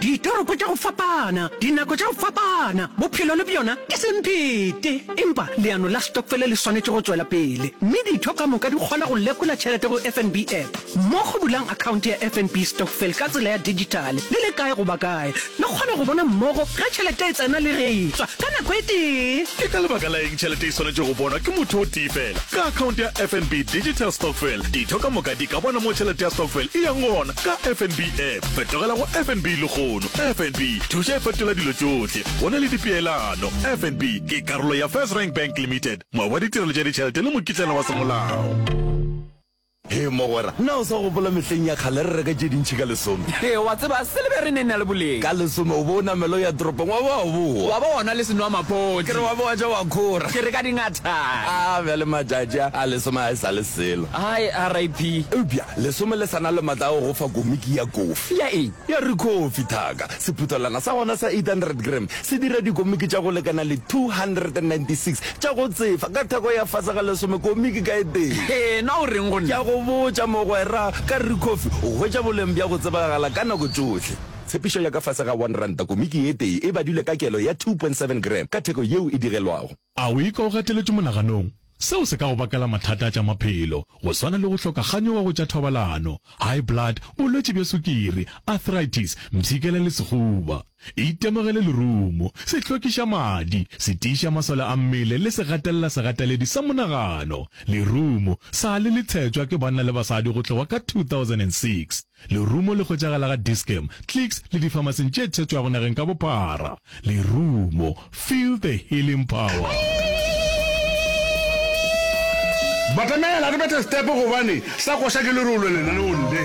ditoropo tša go fapana dinako tša go fapana bophelo le bjona ke semphete empa leano la stokfele le swanetše go tswela pele mme ditho ka moka di kgona go lekola tšhelete go fnb app mo go bulang akhaonto ya fnb stokfel ka tsela ya digitale le le kae goba kae le kgona go bona mmogo ge tšhelete e tsena le ge e tswa ka nako e tee ke ka lebaka la eng tšhelete e swanetše go bonwa ke motho o tee fela ka akhaonto ya fnb digital stokfel Ditho ka moka di ka bona mo tšhelete ya stokvel e yang gona ka FNB app. Fetogela go FNB lehono. FNB, thuša e fetola dilo tšohle. Go na le dipeelano. FNB ke karolo ya First Rank Bank Limited, moabi wa ditirelo tša ditšhelete le mokitlana wa semolao. Hee mogwera, na o sa gopola mehleng ya kgale re reka tše dintši ka lesome? Hee, wa tseba, silebere e ne e na le boleng. Ka lesome o be o namela o ya toropong wa ba wa boa. Wa ba wa nwa le senwamaphodi. Ke re wa be wa ja wa khora. Ke re ka dingata. Aa, bjale matšatši a, a lesome a e sa le. Selo. Hi, RIP. Eupša lesome le sa na le matla a go go fa komiki ya kofi. Ya eng? Ya Rikhofi, thaka. Sephuthelwana sa gona sa 800 gram se dira dikomiki tša go lekana le 296 tša go tsefa ka theko ya fase ga lesome komiki ka e tee. Hee, na o reng go nna? Ke a go botša, mogwera, ka Rikhofi o hwetša boleng bja go tsebagala ka nako tšohle. Tshepišo ya ka fase ga one ranta komiki e tee e badilwe ka kelo ya 2.7 gram ka theko yeo e digelwago. A o e kwa o gateletšwe monaganong? Seo se ka go bakela mathata a tša maphelo, go swana le go hloka kganyogo go tša thobalano, high blood, bolwetši bja sukiri, arthritis, mpshikela le sehuba. Itemogele lerumo, se hlwekiša madi, se tiiša masole a mmele le se gatelela segateledi sa monagano. Lerumo sa le le tshetšwa ke banna le basadi go tloga ka 2006. Lerumo le hwetšagala ga Dis-Chem, Clicks le difamaseng tše thetšwago nageng ka bophara. Lerumo, feel the healing power. Batamela re bethe setepo gobane sa koša ke lerole lenaneong le.